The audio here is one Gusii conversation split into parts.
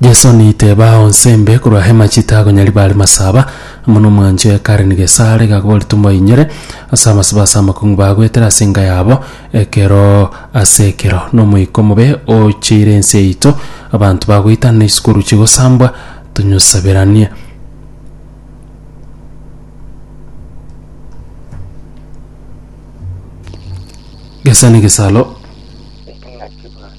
Jeso niteba onse mbe korwa hema chitago nyari bare masaba, amo nomwancho ya Karen Gesare gakobori tomoinyore ase amasiba ase amakong'u bagwetera ase enka yabo ekero ase ekero. Nomoika omobe ocheire ense yaito, abanto bagoitana na isukuru chigosambwa, tonyosaberanie. Gesa negesalo.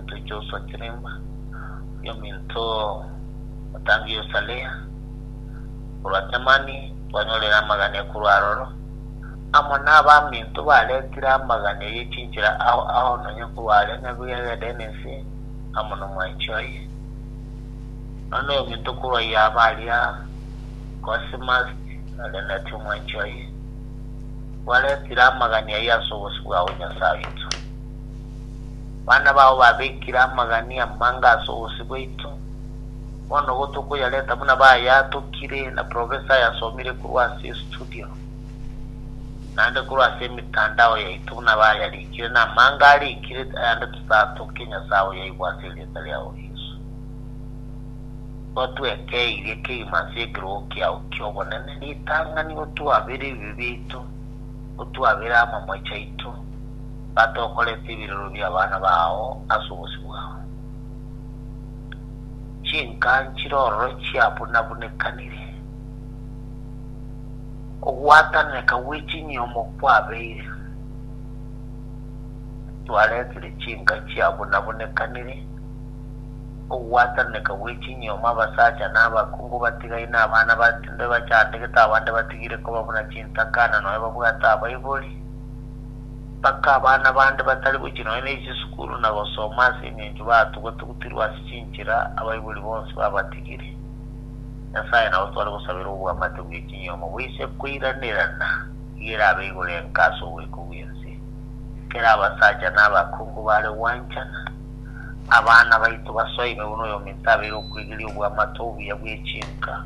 Echunte chi'Osakirimba, ominto otange Yosalea, korwa Temani, twanyorire amagane korwa aroro, amo nabaminto baretire amagane ye chinchera ao ao nonya korwa aria Nyabiu yagenda ense amo nomwanchi oye. Nonya noyominto korwa Yaba aria Cosimas areneti omwanchi oye, kwaretire amagane ayio as'obosio bwao Nyasae oito. Abana bao babekire amagania amange ase obosio bwaito. Bono igo tokoyareta buna bayatokire na professor ayasomire korwa ase estudio, naende korwa ase emetandao yaito buna bayarikire, na amange arikire ayande totatoke Nyasae oyoigwa ase erieta riao Yeso. Igo tweke eiria kegima ase ekerogo kiao ki'obonene, ritang'ani otwabere ebibe biaito, otwabere amamoechi aito, batokoretie ebirero bi'abana bao ase obosio bwao. Chinka nchire ororo chiabunabunekanire, ogwatananeka gwe chinyiomo kwabeire. Twaretire chinka chiabunabunekanire, ogwatananeka gwe chinyiomo abasacha na abakungu batigaine, abana bande bachandegete, abande batigire koba buna chintakana, nonya babwate abaibori. Mpaka abana bande batari gochia nonya ne chisukuru na gosoma ase engencho baatuga-tugutirwe ase chinchera, abaibori bonsi babatigire. Nyasae nabo tware gosabera obwamate bwe chinyomo boise koiranerana igerabe igoro enka ase ogoika gw'ense. Kera abasacha na abakungu bare gwanchana, abana baito basoime buna oyominto abeire okweigeria obwamate obuya bwe chinka,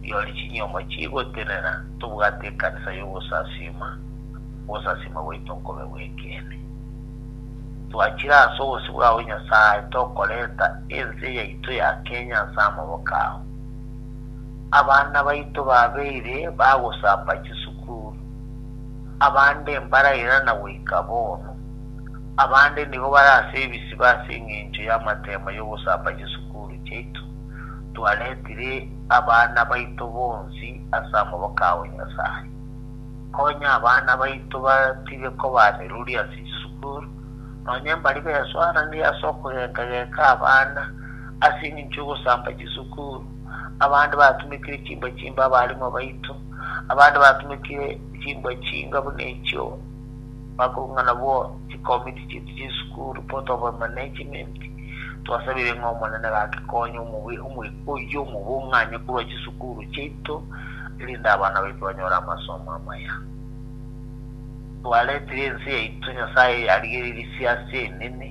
riori chinyomo chigotenena, tobwate ekanisa y'ogosasiima. ogosasiima gwaito nkobe gw'ekeene. Twachire ase obosio bwao Nyasae tokoreta ense yaito ya Kenya ase amaboko ao. Abana baito babeire bagosamba chisukuru, abande mbarairana goika bono, abande nigo bare ase ebisiba ase eng'encho y'amateema y'ogosamba chisukuru chiaito. Twaretire abana baito bonsi ase amaboko ao Nyasae. Konya abana baito batige koba ameruri ase chisukuru, nonya mbari beswaranire ase okogeka-geka abana ase engencho y'ogosamba chisukuru. Abande batumekire chimbwa chimbe abarimwa baito, abande batumekire chimbwa chinga buna echio bakorung'ana bo chikomiti chiaito chi'esukuru, botoba mana echiminti. Twasabire ng'a Omonene gake konya omogwekano. oyio omobung'anye korwa chisukuru chiaito erinde abana baito banyore amasomo amaya. Twaretire ense yaito Nyasae arigereiri siase enene,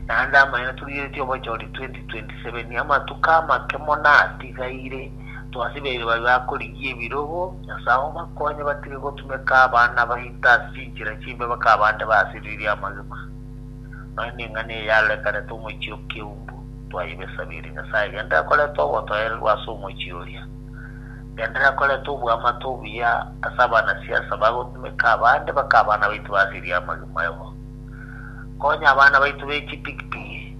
naende amang'ana torigeretie obochori 2027. Amatuko amake mono atigaire, twasibeire baria bakorigia ebirogo, Nyasae obakonye batige gotumeka abana baito ase chinchera chimbe bakabe ande basiririe amagima. Nonya ning'ana eye yarekanete omochie o keumbu, twayebesabirie. Nyasaye gende akorete ogotoererwa ase omochie oria. Gende akorete oboamate obuya ase abanasiasa bagotumeka abande bake abana baito basirie amagima ayomo. Konya abana baito be chipigipigi.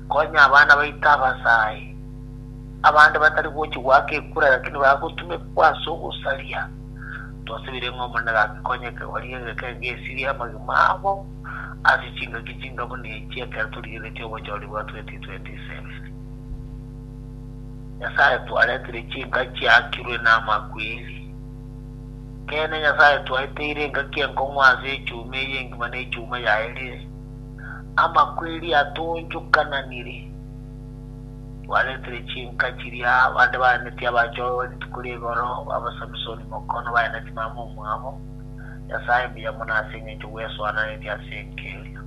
Konya abana baito abasaai. Abande batari gochi goaka ekura lakini bagotumekwa ase ogosaria. Twasabire ng'a Omonene gake konyeke orie egekenge esirie amagima abo. ase chingaki chinga buna echi ekero torigeretie obochori bwa 2027. Nyasae twaretire chinka chiakirwe namakweri. Ekeene Nyasae twaeteire engaki enkong'u ase echuma eye engima na echuma yaye rire. Amakweri atonchokananire. Twaretire chinka chiria abande baeneti abachoe rituko ri'egoro, ba Samisoni mokono baeneti mama omwabo, Nyasae mbuya mono ase engencho bwesoananeti ase enkeria.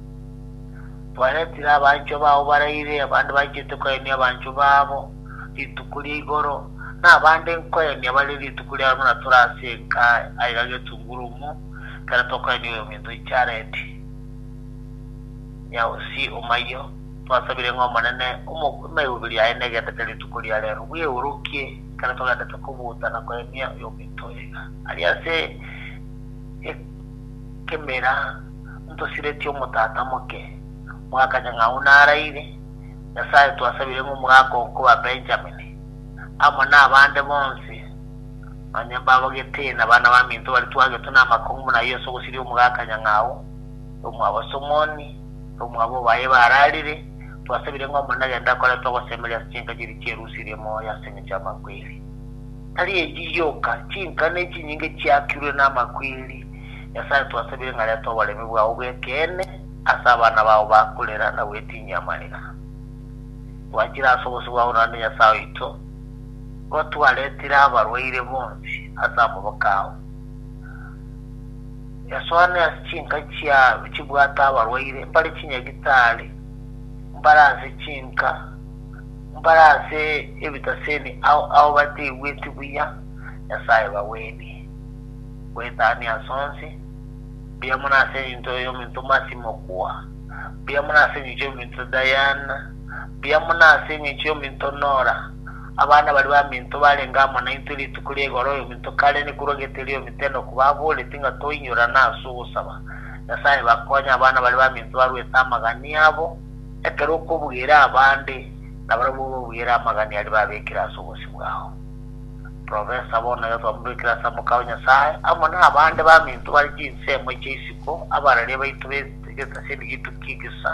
Twaretire abanchwa bao baraire, abande bachete koyenia abanchwa babo rituko ria igoro, na abande nkoyenia bare rituko riabo buna tore ase enka aiga getungurumu ekero tokoyenia oyominto Jaredi. Nyausi omayio, twasabire ng'a Omonene emairoberio yaye negeteke rituko riarero, bweurokie ekero togenderete kobuta na koyenia oyominto oyo iga. Aria ase ekemeera ntosiretie omotata moke, mwakanya ng'ao naraire, Nyasae twasabire ng'omogaka oo koba Benjamin, amo nabande bonsi, onye mbabogetee na bana baminto baria twagetwe namakong'u buna ayio ase ogosiria omogaka nyang'ao, nomwabo Somoni, nomwabo baye bararire, twasabire ng'a Omonene agende akoretwe ogosemeria ase chinka chiria chierusia ria emoyo ase engencho y'amakweri. Tari echi gioka, chinkana echinyinge chiakirwe namakweri. Nyasae, twasabire ng'a reta oboremi bwao bw'ekeene ase abana bao ba korera na gwetinyia amarira. Twachire ase obosio bwao naende Nyasae oito, igo twaretire abarwaire bonsi ase amaboko ao. Yasoane ase chinka chiabo chibwate abarwaire, mbare chinyagitari, mbare ase chinka, mbare ase ebitasemi ao ao bateigweti buya Nyasae bagwenie. Goetania as'onsi, mbuya mono ase engencho y'ominto Mercy Mokua, mbuya mono ase engencho y'ominto Diane, mbuya mono ase engencho y'ominto Nora, abana baria baminto barenge amo naintwe rituko ria igoro y'ominto kare nekorwa gete ri'ominto Enock baboreti ng'a toinyorane as'ogosaba Nyasae bakonye abana baria baminto barwete amagania abo Ekero okobuire abande, nabarabwo obabuire amagani aria babekire ase obosio bwao. Profesa bono Yeso amobekire ase Amaka o Nyasae amo nabande baminto bare chinsemo chia isiko, abararia baito be getasia ebigitu ki gesa,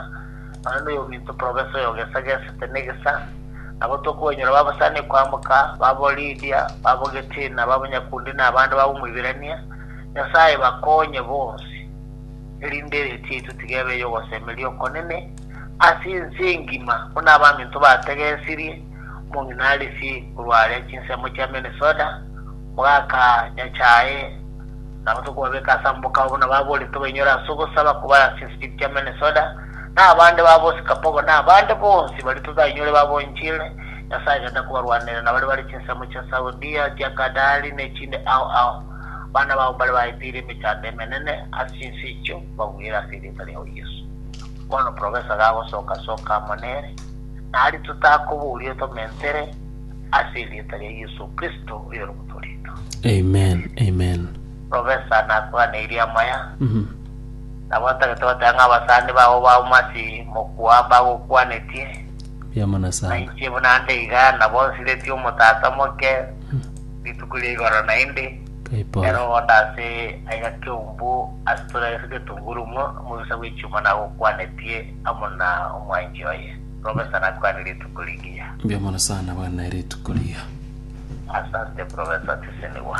nonye noyominto profesa oyo gesa gesete ne gesa, nabo tokonyora babasani koamka, babo Lidia, babo Getina, babo Nyakundi nabande babo Moibirania, Nyasae bakonye bonsi. erinde eretio yaito tigebe y'ogosemeria okonene ase ense engima, buna abaminto bategesirie omong'ina Arisi korwa aaria chinsemo chia Minnesota, mogaka nyachae, nabo tokobabeka ase amaboko ao buna baboretwe bainyore ase ogosaba koba ase chinsirit chia Minnesota, na abande ba bosikapogo, na abande bonsi baria totainyore baba enchili, Nyasae agende kobarwaneria na baria bare chinsemo chia Saudia, chia Qatari, ne chinde ao ao. Abana bao mbare baeteire emechando emenene ase chinse echio bagwere ase erieta riao Yeso. Bono profesa gagosoka soka amo nere, na aria totakobooria tomentere ase erieta ria Yeso Kristo oyore omotoorito. Amen, amen. Profesa nakoganeirie amaya, nabo ntagete goteba ng'a abasani bao bauma ase mokwa mbagokwanetie, Biamana na sana. inche buna nde iga nabo nsiretie omotata omoke, rituko ria igoro naende, ere ogonde ase aiga keumbu asitore ase getunguru ng'o omobisa bw'echuma nagokwanetie amo na omwanchi oye, Professor nakwane rituko rigiya. Mbuya mono sana bwana rituko rigiya. Asante Professor Tisinigwa.